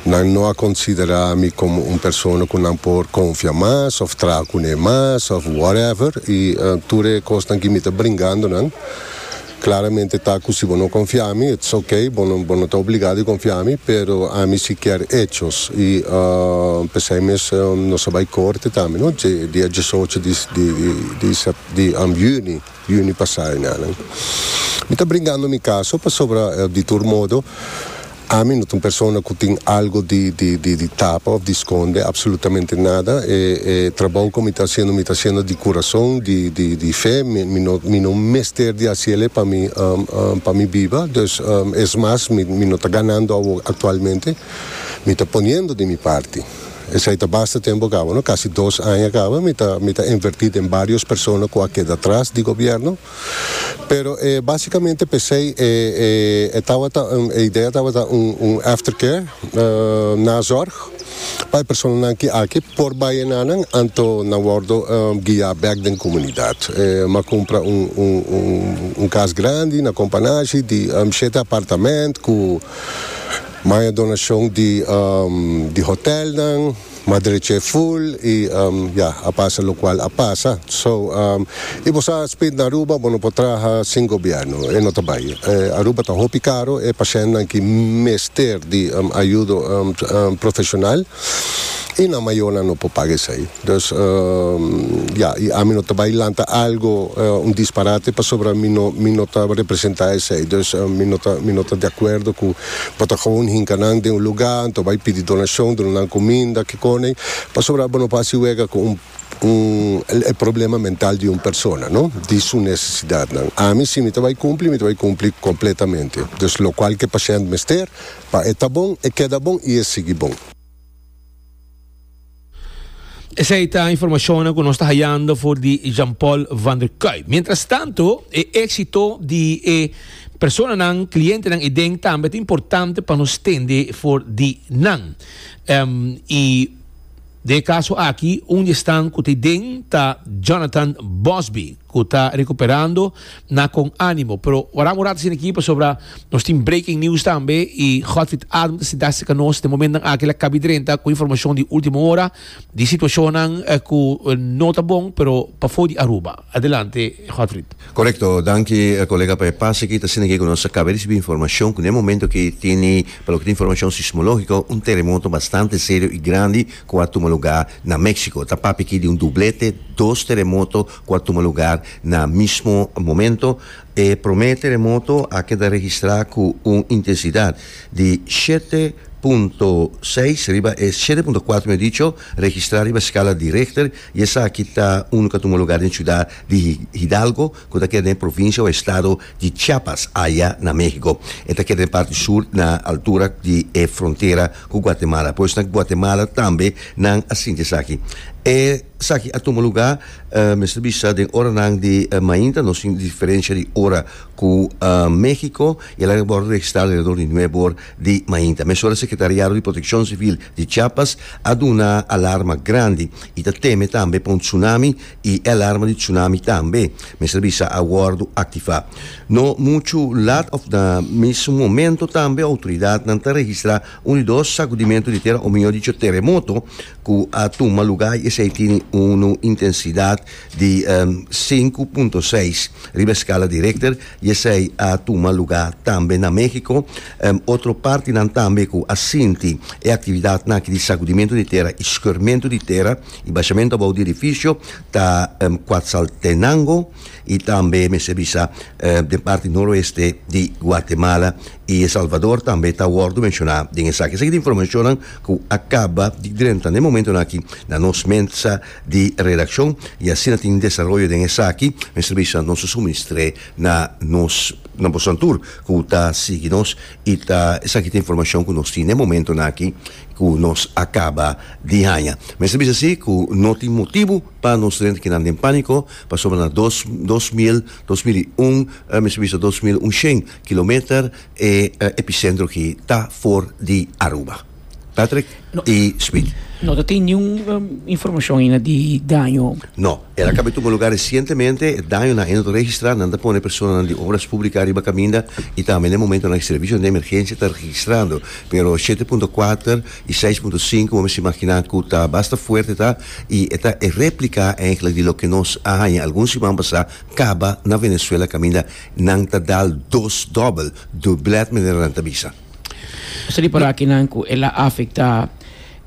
nan no a considera mi como un persona cu nan por confia mas of traha cune mas of whatever y tur e cosnan ki mi ta bringando nan. Claramente ta cu si bo no confia mi, it's ok, bo no bo no ta obliga di confia mi, pero ami si kier hechos y pesey mes nos a bay corte tambe no dje dia diesocho di di di juni, juni pasa, mi ta bringando mi caso pasobra di tur modo Ami no ta un persona ku tin algo di di di tapa òf di skonde apsolutamente nada. E e trabou ku mi ta hasiendo mi ta hasiendo di kurason, di di di fe. Mi mi no mi no mester di hasi elei pa mi pa mi biba. Dus es mas mi mi no ta ganando awor aktualmente. Mi ta poniendo di mi parti. Esei ta basta tempu a kaba no. Kasi dos aña a kaba mi ta mi ta envertí den barios persona ku a keda atras di gobièrnu. Pero e básicamente p'esei e e e tabata un e idea tabata un un aftercare, nazorg, pa e personanan ki aki por bai enanan anto nan wòrdu guia bèk den komunidat. M'a kumpra un un un kas grandi na Companashi di shete apartamènt ku maya donashon di di hotèlnan. ma dreche full y ya a pasa locual a pasa so y bo sa spit na Aruba bo no por traha sin gobierno e no ta bay Aruba ta hopi caro e pacientnan ki mester di ayudo profesional y nan mayornan no por paga esey dus ya y ami no ta bay lanta algo un disparate pasobra mi no mi no ta representa esey dus mi no ta mi no ta de acuerdo cu Bo ta gewoon hinka nan den un lugá anto bai pidi donashon, duna nan kuminda, kikònen, pasobra bo no por hasi wega ku un, un, e problema mental di un persona, no, di su nesesidatnan. Ami si mi ta bai kumpli, mi ta bai kumpli kompletamente. Dus lokual ku e pashènt mester, pa e ta bon, e keda bon i e sigui bon. Esei ta informacionnan cu nos ta hayando for di Jean-Paul van der Kuy. Mientras tanto, e exito di e personanan, clientenan y den tambe ta importante pa nos tende for di nan. Em, y den e caso aki, un di esnan cu ta den ta Jonathan Bosby. cu ta recuperando na con animo. Pero waran un rato asina aki pasobra nos tin breaking news tambe y Godfrid Adam ta sinta cerca nos den momentonan aki la Kaby Drenthe cu informacion di ultimo hora di situacionnan cu no ta bon pero pafo di Aruba. Adelante Godfrid. Correcto, danki colega pa e pas aki. Ta asina aki cu nos a caba di ricibi informacion cu den momento aki tene pa loke ta informacion sismologico un terremoto bastante serio y grandi ku a tuma lugá na Méksiko ta papia aki di un dublete, dos teremoto ku a tuma lugá na mismo momento. E promé teremoto a keda registrá ku un intensidat di shete punto seis riba e shete punto kuater mi a dicho registrá riba skala di Richter i esaki ta unu ku a tuma lugá den siudat di Hidalgo, ku ta keda den provinsia o estado di Chiapas aya na Mehiko. E ta keda den parti sur na altura di e frontera ku Guatemala. Pues na Guatemala tambe nan a sinti esaki. Esaki a tuma luga, mester bisa, den oranan di mainta, nos tin diferensia di ora ku Mehiko i e laga ku a wòrdu registrá alredor di nuebe or di mainta. Mesora Sekretariado di Protekshon Sivil di Chiapas a duna alarma grandi i ta teme tambe pa un tsunami y e alarma di tsunami tambe mester bi sa a wordo activa. No mucho lat of na mismo momento tambe autoridadnan ta registra un di dos sacudimento di tera o mihor dicho teremoto cu a tuma lugar y esey tini un intensidad di sinku punto seis riba e scala di Richter y esey a tuma lugar tambe na Mexico. Otro partinan tambe cu a sinti e actividadnan aki di sacudimento di tera y schurmento di tera. E bashamento abou di edifisio ta Quatzaltenango i tambe mester bisa den parti noroeste di Guatemala i El Salvador tambe ta wordo menshoná den esaki. Esaki ta informashonnan ku a kaba di drenta na e momentonan aki na nos mesa di redakshon i asina tin desaroyo den esaki mester bisa nos a suministr'é na nos na boso antur ku ta sigui nos i ta esaki ta informashon ku nos tin na e momentonan aki. ku nos a kaba di haña. Mester bisa si ku no tin motibu pa nos renta kinan den pániko, pasobra na dos dos mil dos mil i un, mester bisa dos mil unshen kilometer, e episentro aki ta for di Aruba. Patrick i Smith. No ta tin niun informashon aina di daño? No. El a kaba e tuma lugá resientemente. E daño nan ainda ta registrá. Nan ta pone personanan di obras pública riba kaminda i tambe na e momentonan e servisionan di emergensia ta registrando. Pero shete punto kuater i seis punto sinku bo mester imaginá ku ta basta fuerte ta i e ta e réplika eigenlijk di loke nos a haña algun siman pasá kaba na Venezuela kaminda nan ta dal dos dòbel, dublèt, manera nan ta bisa. Mester ripará kinan ku el a afektá.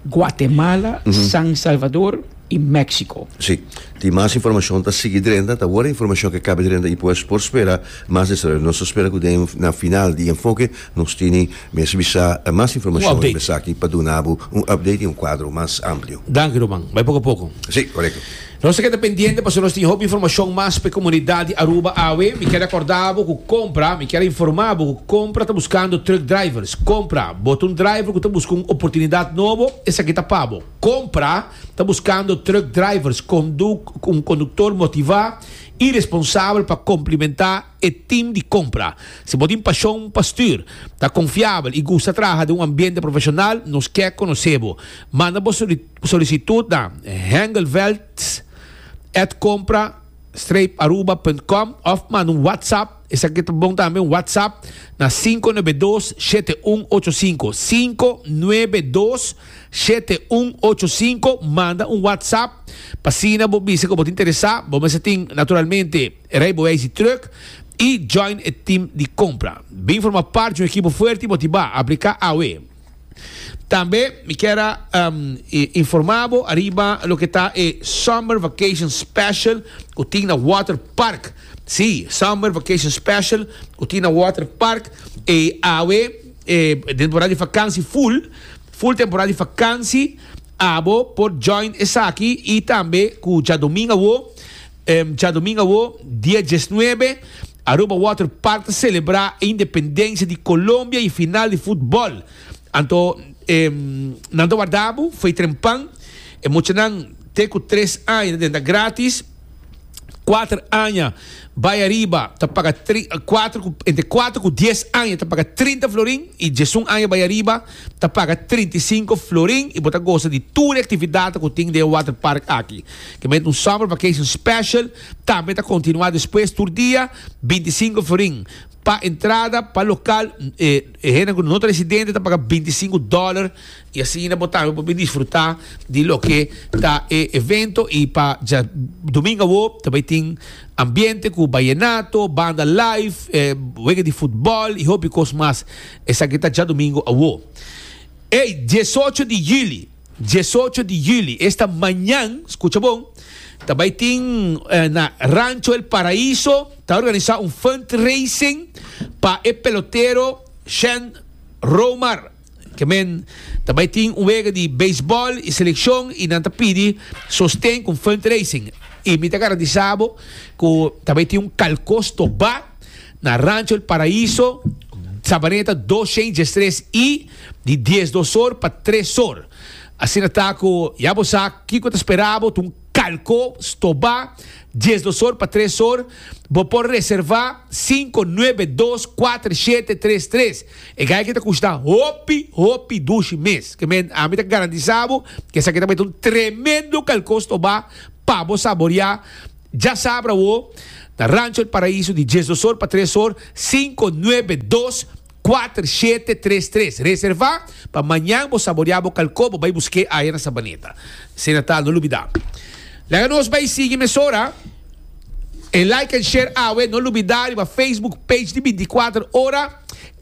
Guatemala, San Salvador y Mexico. Sí, tin mas informacion ta sigui drenta, ta worde informacion ke kabe drenta y pues por spera mas desaroyo. Nos ta spera cu den na final di Enfoke nos tini mes bisa mas informacion riba esaki pa dunabu un update y un cuadro mas amplio. Danki Ruman, bay poco poco. Sí, corecto. Nos ta keda pendiente pasobra nos tin hopi informashon mas pa e komunidat di Aruba awe. Mi kier akorda bo ku kompra, mi kier informa bo ku kompra ta buskando truck drivers. Kompra, bo ta un driver ku ta buska un oportunidat nobo? Esaki ta pa bo. Kompra ta buskando truck drivers, konduk, un konduktor motivá i responsabel pa komplimentá e tim di kompra. Si bo tin pashon pa stür, ta konfiabel i gusta traha den un ambiente profeshonal, nos kier konosé bo. Manda bo. Solicitud na Hengelweldt at compra streep aruba punt com of manda un WhatsApp, esaki ta bon tambe, un WhatsApp na sinku nuebe dos shete un ocho sinku, sinku nuebe dos shete un ocho sinku, manda un WhatsApp p'asina bo bisa ku bo ta interesá, bo mester tin naturalmente e rijbewijs di truck i join e team di compra. Bin forma part di un ekipo fuerte i motivá, apliká awe. Tambe mi kier a informa bo ariba loke ta e Summer Vacation Special ku tin na Water Park. Si, Summer Vacation Special ku tin na Water Park. E awe e temporada di vakansi full, full temporada di vakansi, abo por join esaki i tambe ku djadomingu awo Djadomingo awo, dia diesnuebe, Aruba Water Park ta selebrá e independensia di Colombia y e final di futbol. Anto nan ta warda bo fey trempan. E mochanan te cu tres aña ta denta gratis. Cuater aña bay ariba ta paga tri, cuater cu, entre cuater cu dies aña ta paga trinta florin y diesun aña bay ariba ta paga trinta y cinco florin y bo ta goza di tur e actividadnan cu tin den e water park aki. Te mete un summer vacation special tambe ta continua despues tur dia binti i sinku forin. Pa entrada pa local e hende cu no ta residente ta paga binti i sinku dollar y asina bo tambe por bin disfruta di loke ta e evento y pa dja domingo awo ta bay tin ambiente cu bayenato, banda live, e wega di futbol y hopi cos mas esaki ta dja domingo awo ey diesocho di juli. Diesocho di juli, esta mañan, skucha bon, ta bai tin na Rancho El Paraíso, ta organisá un fundraising pa e pelotero Shen Romar. Kemen ta bai tin un wega di beisbòl i selekshon i nan ta pidi sosten ku un fundraising. I mi ta garantisá bo ku ta bai tin un kalkos tobá. Na Rancho El Paraíso, Sabaneta dos shades dje stres y di dies dos or pa tres or. Asina ta cu ya bo sa kico ta spera bo, ta un calco stoba dies dos or pa tres or. Bo por reserva cinco nuebe dos cuater shete tres tres. E gayke ta cushta hopi hopi dushi mes. Ke men ami ta garantisa bo cu esaki ta mete un tremendo calco stoba pa bo saboria Dja sab awo, na Rancho El Paraíso di dies dos or pa tres or, sinku nuebe dos kuater shete tres tres. Reservá pa mañan bo saboreá bo kalkó bo bai busk'é aya na Sabaneta. Asina ta, no lubidá. Laga nos bai sigui mesora e like and share awe. No lubidá riba Facebook page di binti kuater ora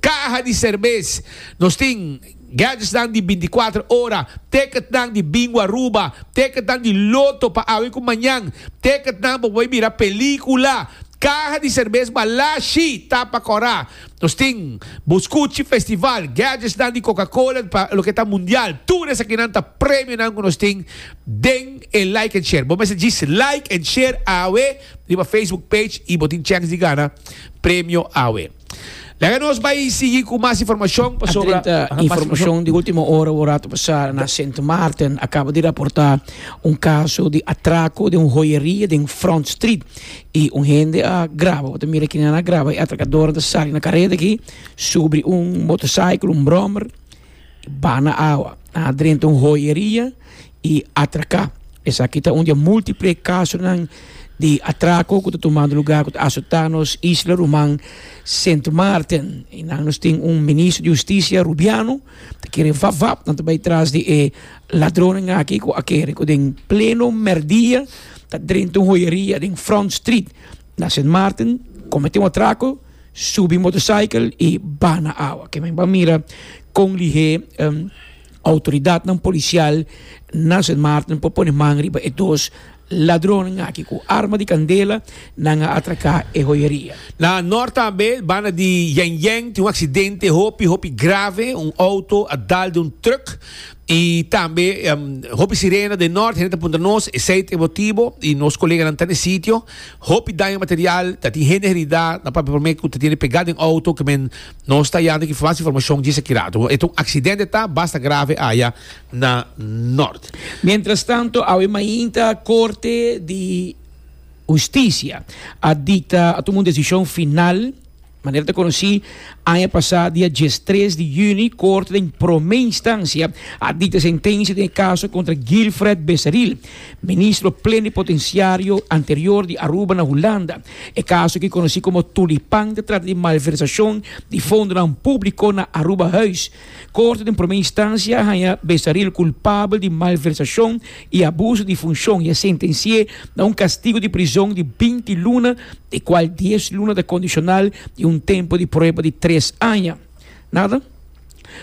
Caja di Serbes. Nos tin. gadgetsnan di binticuater ora, ticketnan di Bingo Aruba, ticketnan di Lotto pa awe cu mañan, ticketnan pa bay mira pelicula, caha di cerbes Malashi ta pa cora. Nos tin Buscuchi Festival, gadgetsnan di Coca-Cola pa loke ta mundial. Tur esakinan ta premionan cu nos tin den e Like and Share. Bo mester djis like and share awe riba Facebook page y bo tin chance di gana premio awe. Laga nos bai sigui cu mas informacion pasobra. Drenta informacion di ultimo ora wou rato pasa na Sint Maarten a caba di raporta un caso di atraco den un joyeria den Front Street y un hende a graba. Bo ta mira aki nan a graba y atracadoren ta sali na careta aki subri un motorcycle, un brommer. Bana awa, a drenta un hoyeria y atraca. Esaki ta un di e multiple casonan di atraco cu ta tumando lugar cu ta asota nos isla ruman Sint Maarten. Y nan nos tin un Ministro di Husticia Rubiano ta kere vap vap nan ta bay tras di e ladronnan aki cu a kere cu den pleno merdia ta drenta un hoyeria den Front Street. Na Sint Maarten komete un atrako, subi motorcykel i baha na awa. Ke mimba mira kon lihé outoridatnan polisial na Sint Maarten por pone man riba e dos ladronnan aki ku arma di kandela nan a atraká e hoyeria. Na nort tambe, banda di Yènyèn, tin un aksidente hopi hopi grave, un outo a dal den un trùk. Y tambe hopi sirena den nort hende ta puntra nos esey ta e motibo y nos coleganan ta n'e sitio. Hopi daño material, ta tin hende herida, nan papia prome cu ta tiene pega den auto cu men no sta yanda ki mas informacion djis aki rato. E ta un accidente ta, basta grave aya na nort. Mientrastanto awe mainta Corte di Husticia a dicta, a tuma un decision final. Manera ta konosí, aña pasá dia diestres di yüni Korte den Promé Instansia a dikta sentensia den e kaso kontra Gilfred Becerril, Ministro Plenipotensiario anterior di Aruba na Hulanda. E kaso ki konosí komo Tulipan ta trata di malversashon di fondonan públiko na Aruba Huis. Corte den prome instancia a haña Besaril culpabel di malversacion y abuso di funcion y a sentenci'é na un castigo di prison di binti luna, di cual dies luna ta condicional y un tempo di prueba di tres aña. Nada.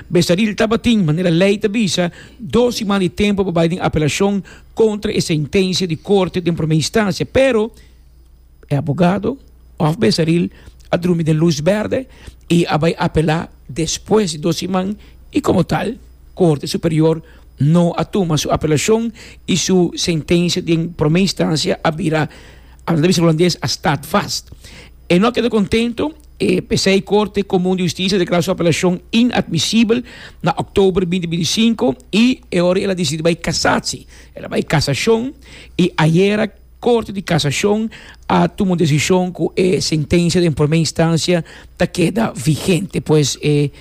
Besaril tabatin, manera ley ta bisa, dos siman di tempo pa bay den apelacion contra e sentencia di Corte den prome instancia, pero, e abogado òf Bezeril a drumi den lus bèrdè i a bai apelá despues di dos siman i komo tal Korte Superior no a tuma su apelashon i su sentensia den promé instansia a bira a disa hulandes a stat vast. E no a keda kontentu e p'esei Korte Komun di Hustisia a deklará su apelashon inadmisibel na òktober binti binti i sinku i e ora el a disidi bai kasatsi el a bai kasashon i ayera Corte di Casacion a tuma un decision cu e sentencia den prome instancia ta keda vigente pues e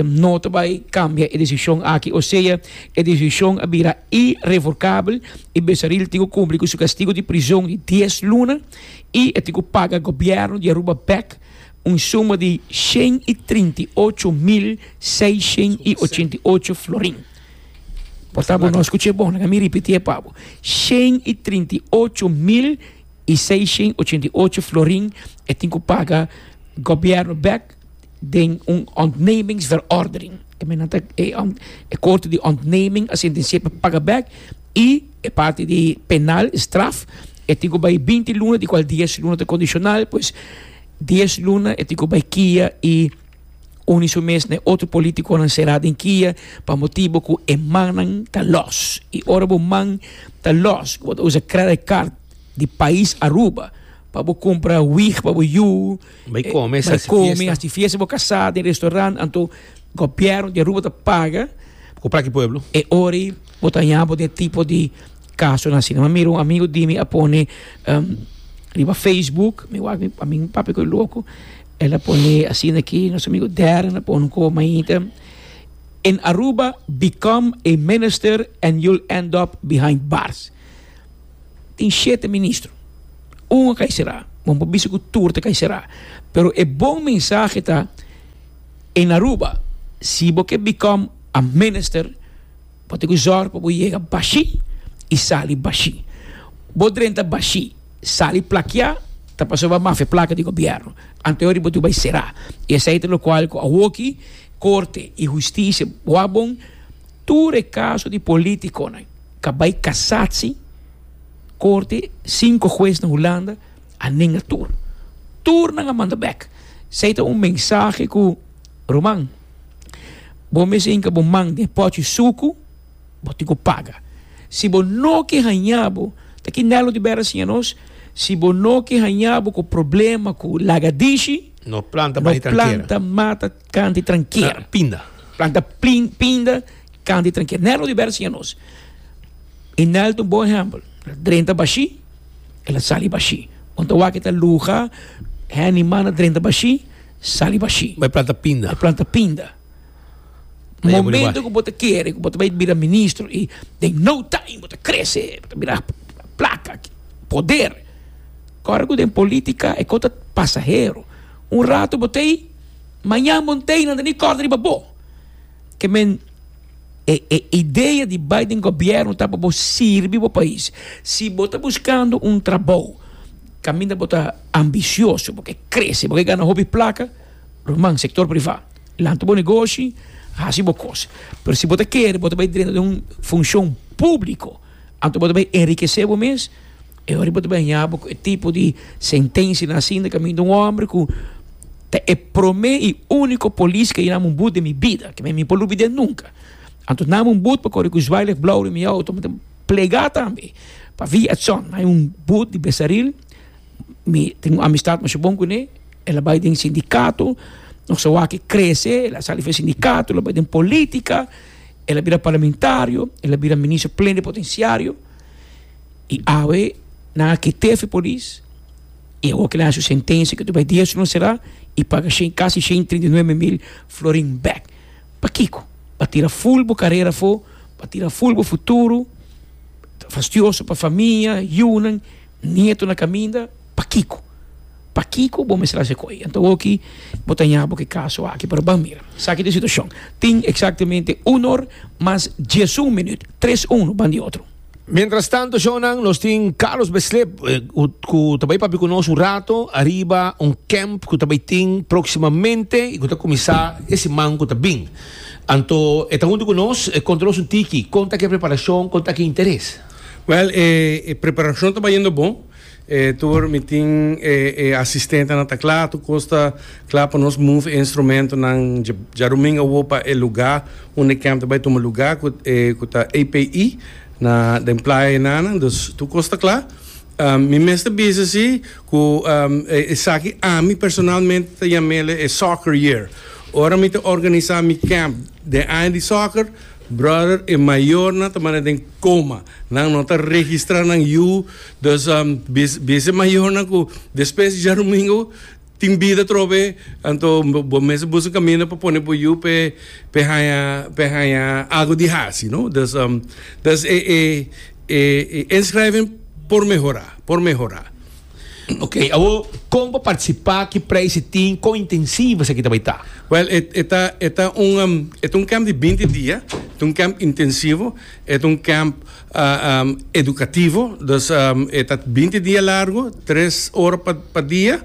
no ta bay cambia e decision aki osea e decision a bira irevocable y Besaril tin cu cumpli cu su castigo di prison di dies luna y e tin cu paga gobierno di Aruba bek un suma di shen y trinta y ocho mil seishend y ochenta y ocho florin. Por tabo no skuché bon, laga mi ripitié pa bo, shen i trinta i ocho mil i seishen i ochenta i ocho florin e tin ku paga gobièrnu bèk den un ontnemingsverordening. E mennan ta e korte di ontneming a sentensiaé pa paga bèk i e parti di penal, straf, e tin ku bai binti luna, di kual dies luna ta kondishonal, pues dies luna e tin ku bai kia i. Uni su mes na e otro politiconan será den kia pa motibo cu e mannan ta los. Y ora bo man ta los cu bo ta usa credit card di pais Aruba pa bo cumpra wig pa bo yu, Bai come, bai haci come, fiesta. haci fiesta bo casá den restaurant, anto gobierno di Aruba ta paga Cu plaki pueblo. e ora ei bo ta haña bo den e tipo di casonan asina. Mi a mira un amigo di mi a pone riba Facebook, mi wak mi, a mi papi cu e loco, El a pone asina aki, nos amigo Darren a pone un koba mainta, In Aruba, become a minister and you'll end up behind bars. Tin shete ministro, un a kai será, bo no por bisa ku tur ta kai será, pero e bon mensahe ta, in Aruba, si bo ke become a minister, Bo tin ku zòrg pa bo yega bashí i sali bashí. Bo drenta bashí, sali plakiá, ta pasobra mafia plaka di gobièrnu. Anto yori bo tin ku bai será. I esei ta lokual ku awoki korte i hustisia wak bon tur e kaso di polítikonan ka bai kasatsi korte sinku hues na Hulanda a nenga tur. Tur nan a manda bèk. Esei ta un mensahe ku. Ruman, bo mes hinka bo man den e pòchi suku, bo tin ku paga. Si bo no ke hañá bo, ta ki Nelo di Bèra siña nos, si bo no ke hañá bo ku problema ku lagadishi, no planta mata kan di trankera, planta pinda kan di trankera. Nelo di Bèra siña nos, i nel ta un bon ehèmpel, el drenta bashí, el a sali bashí. Bo ta wak e ta luha, hènima na drenta bashí. Sali bashi. Bo e planta pinda. E planta pinda. Momento ku bo ta kere ku bo ta bai bira ministro i den no time bo ta krese, bo ta bira plaka, poder. Kòrda ku den politika e kos ta pasahero. Un ratu bo ta ei, mañan bo n'ta ei nan ta ni kòrda riba bo. Ke men e e idea di bai den gobièrnu ta pa bo sirbi bo pais. Si bo ta buskando un trabou. Caminda bo ta ambicioso, bo ke crece, bo ke gana hopi placa, ruman, sector priva, lanta bo negoshi, haci bo cos. Pero si bo ta kere bo ta bay drenta di un funcion publico, anto bo ta bay enriquece bo mes, e ora bo ta bay haya bo cu e tipo di sentencia na hacinda caminda un hombre cu ta e prome y unico polis ke a yina mumbut den mi bida, ke mi por lubide nunca. Anto na mumbut pa corre cu zwaailicht blauw den mi auto. Plegá tambe pa via Edson. Hay un boot di Besaril, mi tin un amistad masha bon kuné, el a bai den sindikato, nos a wak e krese, el a sali for e sindikato, el a bai den polítika, el a bira parlamentario, el a bira minister plenipotenciario, i awe nan a kit'é for e polis, i awor kilaha su sentencia, ke tur bai dies luna será, i paga shen, casi shen y treinta y nuebe mil florin bek. Pakiko? Pa tira ful bo karera afó, pa tira ful bo futuro, ta fastioso pa famia, yunan, nieto na kaminda, pakiko? Pakiko bo mester hasi koe? Anto oki bo ta ña bo ke kaso aki, pero ban mira, esaki ta e situashon, tin eksaktemente uno or mas diesun minüt, tres uno ban di otro. Mientras tanto Jonan nos tin Carlos Beslep cu ta bay papi cu nos un rato ariba un camp cu ta bay tin proximamente y cu ta cuminsa e siman cu ta bin. Anto e ta hunto cu nos e conta nos un tiki con ta ki e preparacion, con ta ki e interes? Well e preparacion ta bay yendo bon. E tur mi tin e e asistentenan ta kla tur kos ta kla pa nos move e instrumentonan dje djarumingu awo pa e luga unda e kèm ta bai tuma luga ku e ku ta API na den playa enanan dus tur kos ta kla mi mester bisa si ku esaki ami personalmente ta yam'ele e soccer year ora mi ta organisa mi kèm den aña di soccer brother e mayornan ta manda den coma nan no ta registra nan yu Dos bese mayornan cu despues djarumingo tin bida trobe, anto bo mester busca un camino pa pone bo yu p'e haña agu di haci, no? Dus, dus e inschrijving por mehora, por mehora. Ok, awor con pa participa, ki prijs e tin, con intensivo esaki ta bay ta? Wel, e ta, e ta un, e ta un camp di binti dia, e ta un camp intensivo, e ta un camp. educativo, dus e ta binti dia largo, tres ora pa dia,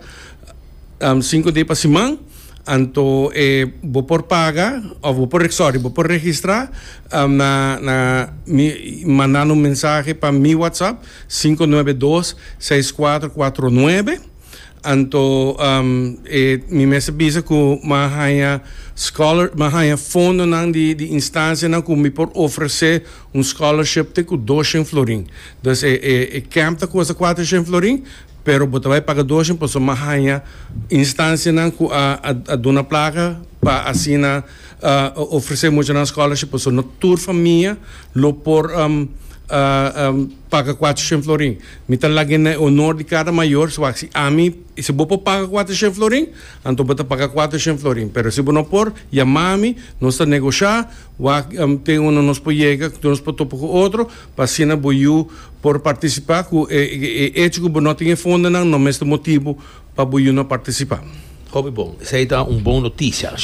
sinku dia pa siman, anto e bo por paga of bo por sorry bo por registra na na mi mandan un mensahe pa mi WhatsApp sinku nuebe dos seis kuater kuater nuebe anto e mi mester bisa ku mi a haña scholar mi a haña fondonan di di instancianan ku mi por ofrese. Un scholarship te cu doshen florin. Dus e e e camp ta custa cuatroshen florin, pero bo ta bay paga doshen pasobra bo a haya instancianan cu a a a duna placa pa asina um ofrece muchanan scholarship pasobra no tur famia lo por um um paga cuatroshen florin. Mi ta lag'e na e honor di cada mayor si bo a si ami si bo por paga cuatroshen florin anto bo ta paga cuatroshen florin, pero si bo no por yama mi nos ta negocia. Wak den unda nos por yega, den nos por topa ku otro, pa asina bo yu por partisipa ku e echo ku bo no tin e fondonan, no mester motibu pa bo yu no partisipa. Hopi bon. Esei ta un bon notisia.